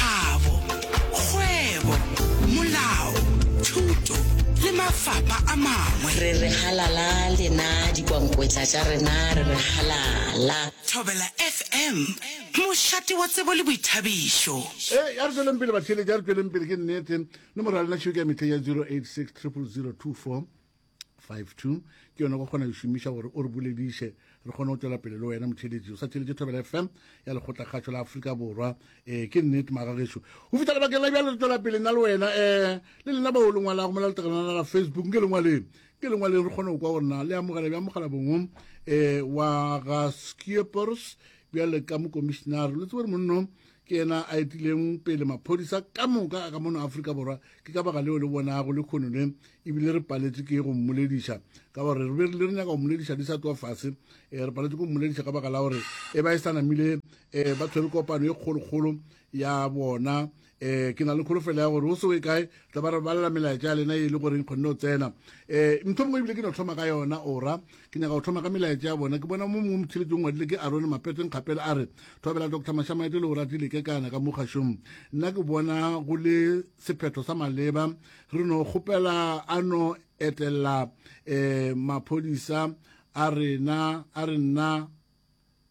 kabo, kgwebo, molao, thuto le mafapa a mangwe. Re re halala lena dikwankwetla tša rena re re halala. Thobela FM, mošate wa tsebo le boithabišo. Ee, ya re tšweleng pele batheeletši, ya re tšweleng pele, ke nnete. Nomoro ya lena tšhwika ya mehleng ya 08600024. 52 ke yone go kgona go šomiša gore o re bolediše re kgone go tšwela pele le wena motšheletši o sa tšheletše thobela fm ya lekgotlakgatšho la aforika borwa um ke nnete magageso go fitlha lebakeng la bjale re tšwela pele nna le wena um le lena bao le ngwalago mo la letegelana la facebook nke lengwaleng ke lengwaleng re kgone go kwa gorena le amogela bja mogala bongwe um wa ga skiepers bjale ka mokomišenare le tsebore monno ke yena a etileng pele maphodisa ka moka a ka mono afrika borwa ke ka baka leo le bonago le kgono le ebile re paletše ke go mmolediša ka gore re berile re nyaka go mmolediša di sa tloa fase um re paletše go mmolediša ka baka la gore e ba e sa namile um ba tshwere kopano e kgolokgolo ya bona um ke na le kholofelo ya gore o se o e kae tla ba re balela melaetša ya lena e le goreng kgonne go tsena um ntho mongwe ebile ke no tlhoma ka yona ora ke nyaka go tlhoma ka melaetša ya bona ke bona mo mongwe motheletšong ngwadile ke arone mapeteng kgapele a re thobela doctor mashamaete le o ratile ke kana ka mo kgašong nna ke bona go le sephetho sa maleba re no kgopela a no etelela um maphodisa a rena a re nna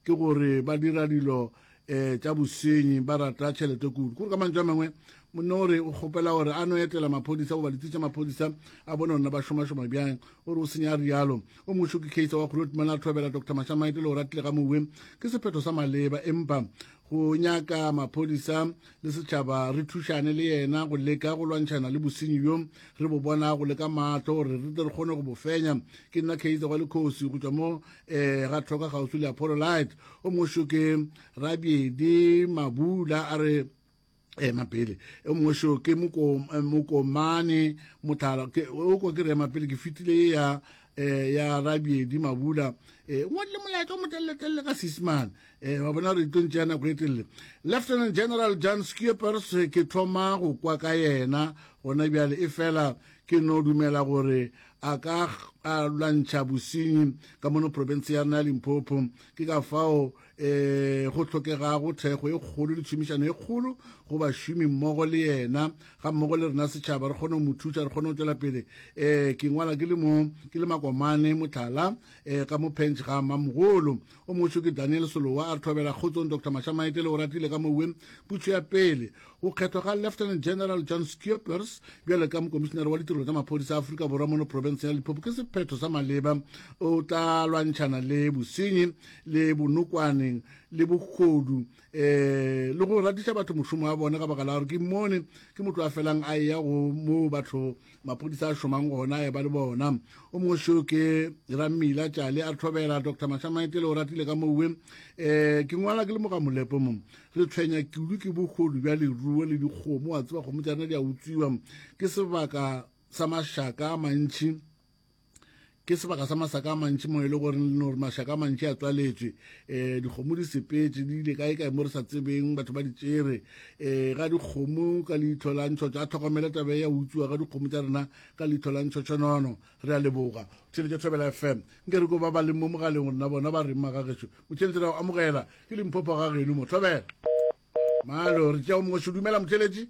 ke gore ba dira dilo um tša bosenyi ba rata tšhelete kudu kore ka mantšu a mangwe monna o re o kgopela gore a no etela maphodisa goba litsi tša maphodisa a bone gona ba šomašoma bjang o re o senya rialo o mošo ke case wa kgolotumela thobela dr mashamaite le go ratile ga mowe ke sephetho sa maleba empa go nyaka maphodisa le setšhaba re thušane le yena go leka go lwantšhana le bosenyi bjo re bo bonago le ka maatlo gore re tle re kgone go bo fenya ke nna kheitsa wa lekgosi go tšwa mo um eh, ga tlhoka kgauswi le apololite o mošo ke rabiedi mabula a re ema pele e mongwe seo ke mokomane motlhala o ko ke re ema pele ke fitile e ya eh ya rabiedi mabula eh ngwa le molaetsa mo telle telle ka sisman eh wa bona re tlo ntšea nako e telle lieutenant general john skippers ke thoma go kwa ka yena gona bjale e fela ke no dumela gore a ka a lwantšha bosenyi ka mono province ya rena ya limpopo ke ka fao um go hlokegago thekgo e kgolo le tšhomišano e kgolo go bašomi mmogo le yena ga mmogo le rena setšhaba re kgone go mo thuša re kgone go tšwela pele um ke ngwala ke le mo ke le makomane motlhala um ka mo penge ga mamogolo o mošo ke daniel solowa a re thobela kgotsong dr mašamaetele o ratile ka mowe putšo ya pele Go kgethwa ga Lieutenant General John Schiepers bjale ka mokomišinare wa ditirelo tša maphodisa a Afrika Borwa mono profenseng ya Limpopo ke sephetho sa maleba. O tla lwantšhana le bosenyi le bonokwane le bogodu um eh, le go ratiša batho mošomo wa bone ka baka la gore ke mone ke motho a felang a eya go moo batho maphodisa a šomang gona e ba le bona o mongwe seo ke rammila tšale a tlhobela dr mashamaetele o ratile ka mowe um ke ngwala ke le moga molepo mo re tshwenya kudu ke bogolo bja leruo le dikgomo wa tseba kgomo tša rena di a utswiwa ke sebaka sa mašaka a mantšhi ke sebaka sa masaka a mantši mo e le gore no gore mašaka a mantši a tswaletswe um eh, dikgomo di sepetse di ile kae kae mo re sa tsebeng batho ba di tsere um ga dikgomo ka leitlho la ntshotsho a tlhokomele tabe ya utswiwa ga dikgomo tsa rena ka leitlho la ntshotshonono re a leboga tšhelete thobela fm nke re ko ba ba leng mo mogaleng rena bona ba reng magageso motšheletse ra go amogela ke limphopo ga geno mo thobela malo re tšea o mongwe se dumela motšheletsi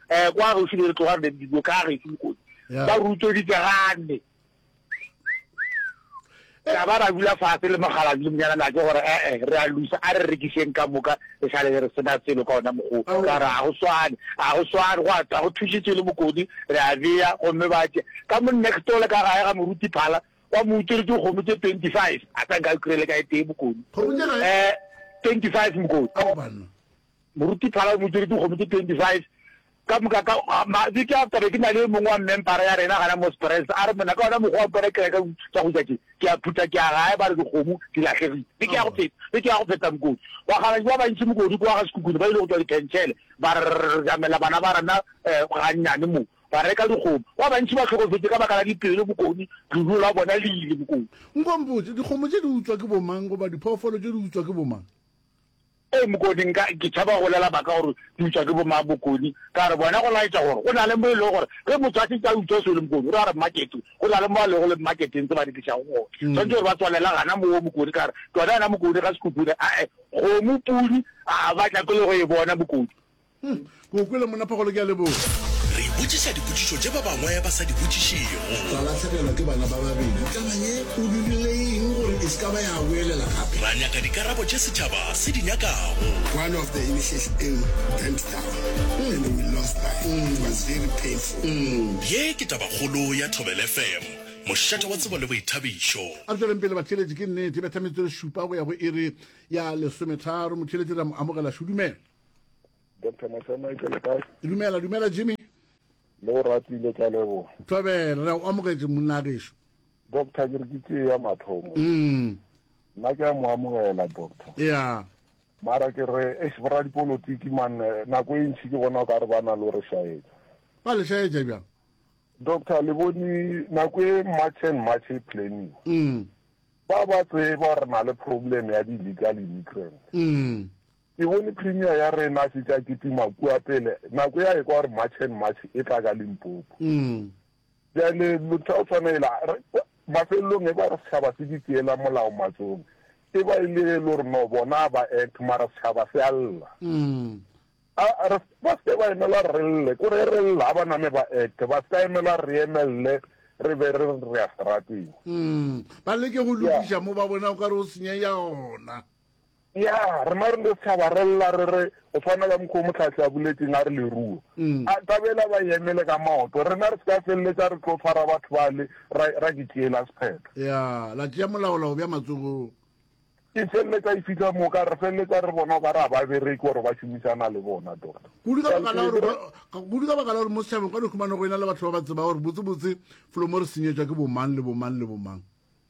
Eh, kwa gaufi le re tloga re ne dibo ka gešo mokodi ba rutsoditse gane ka ba ra dula fase le mogalazi le monyana na ke gore ee re a lusa a re rekiseng ka moka re sa le re sena selo ka ona mogo ka re a go swane a go swane go a go thušitse le mokodi re a beya gomme ba tše ka mo next ole ka gae ga moruti phala wa mo utswere ke kgomo tse twenty five a tsa nka kry-ele ka e tee mokodi um twenty five mokodi Moruti Phala o mo tšere dikgomo tše 25 ka moka ka mabeke a taba. Ke na le e mongwe wa mmempara ya rena gana mo Springs a re, Monna, ka ona mokgwa wa mpona ke reka tša go ja tše, ke a phutha ke ya gae ba re dikgomo di lahlegile. Beke ya go feta, beke ya go feta mokoti. Bakgalabje ba bantši mokodu kwa ga Sekhukhune ba ile go tšwa Dipentšhele ba rjamela bana ba rena gannyane mo, ba reka dikgomo. Ba bantši ba hlokofetše ka baka la dipelo mokoni, leruo la bona le ile mokoni. Nko mpotše, dikgomo tše di utswa ke bomang goba diphoofolo tše di utswa ke bomang? Ee, Mokoni, nka, ke tšhaba go lela baka gore ke utswa ke bomang, Mokoni. Ka re, Bona go laetša gore go na le mo e lego gore ge motho a šetše a utswa selo, Mokoni, o re a re Makete, go na le mo a lego le Maketeng tse ba di tlišago gona. Swanetše gore ba tswalela gana moo, Mokoni. Ka re, Tšona yena, Mokoni, ga se khukhune, a-e, kgomo, pudi, a-a, ba tla ke le go e bona, Mokoni. Hmm, ke o kwele monna Phagolo ke a leboga. Re ipotšiša dipotšišo tše ba bangwe ba sa di botšišego. Ka lahlegelwa ke bana ba babedi. Taba ye o dirile eng gore e se ka ba ya boelela gape? Ra nyaka dikarabo tše setšhaba se di nyakago. One of the initiation in went down and we lost that. It was very painful. Ye ke tabakgolo ya Thobela FM, mošate wa tsebo le boithabišo. A re tšweleng pele batheeletši, ke nnete e betha metsotso e šupa go ya go iri ya lesometharo. Motheeletši re a mo amogela. Šudumela. dr masema ke le kae dumela dumela jimmy le o ratile ka leboga thobela re o amogetse monna gešo doctor ke re ke tee ya mathomo mm. nna ke a mo amogela doctor ya mara ke re ex bra dipolotiki man eh, nako e ntšhi ke bona o ka re ba na le re shaetsa ba le shaetsa bjang doctor le bone nako e march and march e planning mm. ba ba tseba re na le problem ya di-legal immigrant mm. Ke bone Premier ya rena a šetše a kitima kua pele, nako ye a ekwa gore March and March e tla ka Limpopo. Bjale motho a go tshwana yela, mafelelong e ba re setšhaba se di tšeela molao matsogong, e ba e le ge e le gore no bona a ba act mara setšhaba se a lla. A re ba se ke ba emela gore re lle, ko re re lla ga ba name ba act, ba se ka emela gore re emelele re be re re ya serateng. Ba leke go lokiša mo ba bonago ka re go senyega gona. Ya, rena re no tšhaba re lla re re, go swana ka mokgwa o Mohlahli a boletšeng a re leruo mm. a ka bela ba yemele ka maoto, rena re se ka feleletša re tlo tshwara batho bale ra, ra ke tšeela sephetho. Ya, la tšea molaolao bja matsogong. Ke feleletša e fihla moo ka re feleletša re bona o ka re a ba bereke gore ba šomišana le bona doctor. Kudu ka baka la gore kudu ka baka la gore mo setšhabeng ka no khumana go ena le batho ba ba tsebago gore botse botse felo mo re senyetšwa ke bomang le bomang le bomang.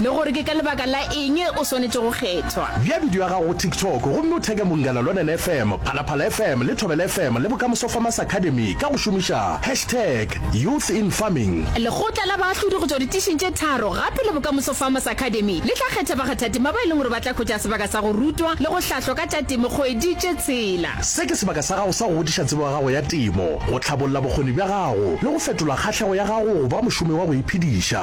le gore ke ka lebaka la eng o swanetše go kgethwa. Bea bidio ya gago go TikTok gomme o theke Mongala Lonene FM, Phalaphala FM le Thobela FM le Bokamoso Farmers Academy ka go šomiša hashtag Youth in Farming. Lekgotla la baahlodi go tšwa ditišing tše tharo gape le Bokamoso Farmers Academy le tla kgetha bakgathatema ba e leng gore ba tla hwetša sebaka sa go rutwa le go hlahlwa ka tša temo kgwedi tše tshela. Se ke sebaka sa gago sa go godiša tsebo ya gago ya temo, go hlabolla bokgoni bja gago le go fetola kgahlego ya gago go ba mošomi wa go iphediša.